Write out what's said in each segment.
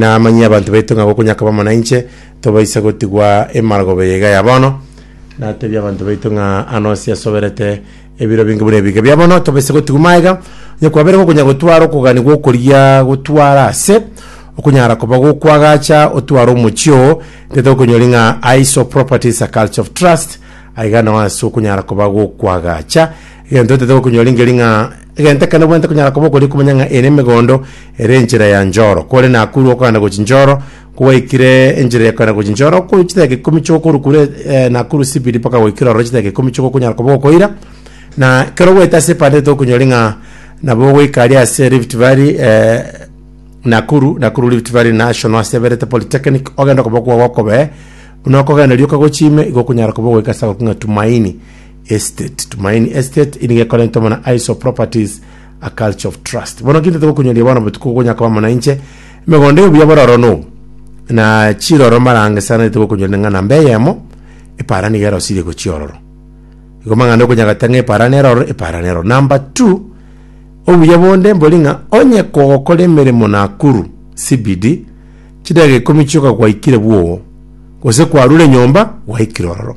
Namanyie abanto baito ng'a gokonyaka bamo nainche, tobaisa gotigwa emargoba eye iga ya bono. Natebie abanto baito ng'a ano ase asoberete ebiro binge buna ebiga bia bono, tobaisa gotigwa maega, onye kwabeire gokonya gotwara okoganigwa okoria gotwara ase okonyara koba gokwagacha otware omochie oo, nge tokonyori ng'a aiso properties a culture of trust, aiga nao ase okonyara koba gokwagacha, egento totaete gokonyori ngeri ng'a Egento ekero nabwenerete konyara koba okoria komanya ng'a eye nemegondo ere enchera ya Njoro, kore Nakuru okogenda gochia Njoro, kogwaikire enchera ya kogenda gochia Njoro, okoru chidakika ikomi chio okoru kure eh, Nakuru CBD mpaka goikera ororo chidakika ikomi chio okonyara koba okoira, na ekero ogoeta ase epande tokonyori ng'a nabo ogoika aria ase Rift Valley eh, Nakuru, Nakuru Rift Valley National ase eberete Polytechnic, ogenda okoboko kwao gokobee, buna okogenderia okagochia ime, igo okonyara koba ogoika ase agoking'a Tumaini. Estate, Tumaini Estate nigo ekorentwe amo na Iso Properties, a culture of trust. Bono ki ntogokunyoria bono botuko gonya koba amo na inche, emegondo y'obuya bororo nobu, na chiroro marange sana nitogokunyoria neng'ana mbe eyemo, epara nigo erosirie gochia ororo. Igo mang'ana okonya gata ng'a epara nero ororo, epara nero ororo. Number two, obuya bonde mbori ng'a onye kogokora emeremo Nakuru CBD, chidageka ikomi chioka gwaikire bwogo, gose kwarure nyomba gwaikire ororo.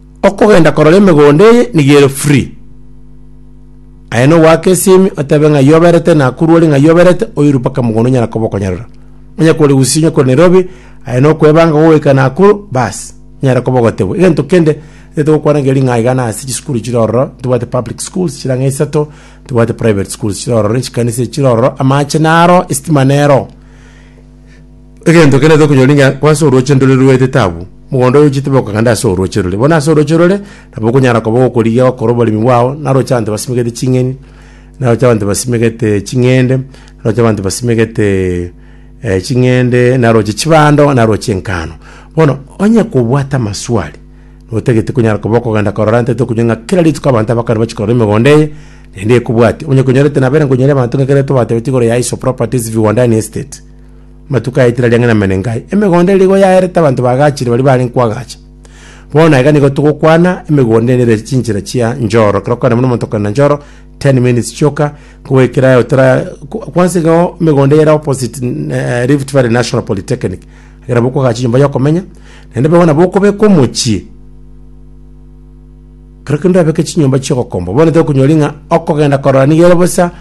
Okogenda korora emegondo eye nigo ere free. Aye no goaka esimi otebe ng'a yo oberete na akuru ore ng'a yo oberete oirwe mpaka mogondo onyara koba okonyarora. Onye kore Gusii onye kore Nairobi aye no kwebanga gogoika na akuru baas nyare koba ogotebwa. Egento kende tete gokwana ngeria ring'ana iga na ase chisukuru chire ororo ntobwate public schools chire ang'e isato ntobwate private schools chire ororo chikanisa chire ororo amache naro estima nero. Egento kende tokonyora inga ko ase orooche ndore rwetete abwo, mogondo oye ochete bokogenda ase orooche rore. Bono ase orooche rore nabo okonyara koba gokorigia gokora oboremi bwao, naroche abanto basimegete ching'eni, naroche abanto basimegete ching'ende, naroche abanto basimegete eh ching'ende, naroche chibando, naroche engano. Bono onye kobwate amaswali, notagete konyara koba okogenda korora nte tokonywa ng'a kera rituko abanto abakare bachi korora emegondo eye, naende ekobwatia. Onye konyorete nabere nkonyora abanto ng'a ekero tobatebetie igoro ya Aiso Properties, Viwandani Estate. Amatuko a etira riang'ina Menengai, emegondo ere nigo yaerete abanto baagachire baria barenge koagacha. Bono aiga nigo togokwana emegondo ere nere chinchera chia Njoro, ekero okogenda buna omonto okogenda Njoro, 10 minutes kioka, kogoikera aye otara ko- kwansa iga oo emegondo ere opposite mm, eh, Rift Valley National Polytechnic, ekero bokoagacha enyomba yokomenya, naende bono nabo okobeka omochie. Kero kende abeke chinyomba chi'ogokombwa. Bono tokonyori ng'a okogenda korora nigo ere bosa,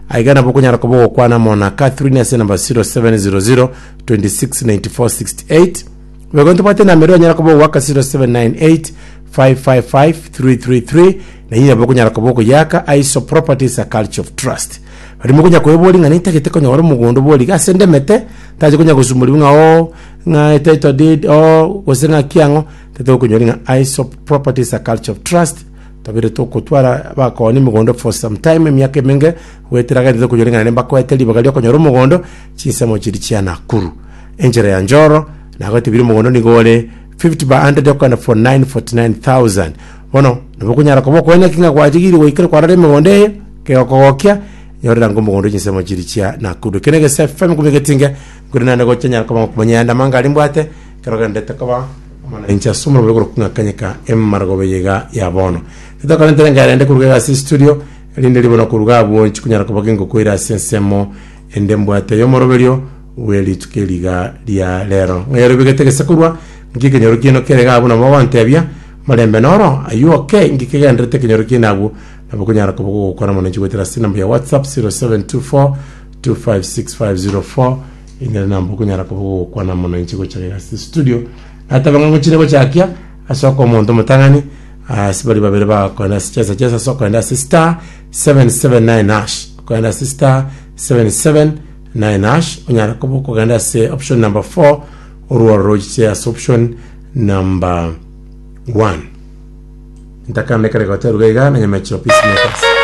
aiga nabo okonyara koba ogokwana amo na Catherine ase enamba 0700 269468. Boigo ntobwate enamba eria onyara koba ogoaka 0798 555 333 na eyio nabo okonyara koba okoyeaka Aiso Properties a Culture of Trust. Bari mokonya kweboria ng'a nintagete konyora omogondo bori gase ndemete, ntache konya gosumorigwa ng'a oo, ng'a title deed oo, gose ng'a ki ang'o, Titokonyoria ng'a Aesop Properties a Culture of Trust tobire togotwara abakooni mogondo for some time, emiaka emenge, goetera gento tokonyoria ng'a naende mbakoete ribaga ri'okonyora omogondo chinsemo chiria chia Nakuru. Enchera ya Njoro nagoete biria omogondo nigo ore 50 by 100 okogenda for 949,000. Bono nabo okonyara koba okoena ki ng'a gwachigiiri goikera kwarara emegondo eye, kegokogokia, nyorera ng'a omogondo chinsemo chiria chia Nakuru. Eke na egesemi kobua egetinge, nkore naende gocha nyare koba ngokumanya yande amangare mbwate, Kerogendete koba omonainche ase omorembe bw'igoro kong'akanyeka emaragoba eye iga ya bono. Titokarente nenga yarende koruga iga ase estudio, erinde ribe na koruga abwo chikonyara koba gengoko ere ase ensemo ende mbwate y'omoroberio bwe rituko eri iga ria rero. Ng'a yorobegete gese korwa, nki ekenyoro kiaino kere iga abwo nabo ogotebia, Marembe noro, Are you ok? Nki kegenderete ekenyoro kiaino abwo? Nabo konyara koba gogokwana omonainche goetera ase enamba ya WhatsApp 0724 256504. Ekero namba okonyara koba gokwana mono inche gocha gega ase studio nateba ng'a ngochire gochakia ase oka omonto omotang'ani ase bari babere bagakwana ase chesa chesa ase okoenda ase star 779 hash okoenda ase star 779 hash onyara koba okogenda ase option number 4 orworo rochiche ase option number 1 ntakande kare goteruga iga na nyameche opisi makers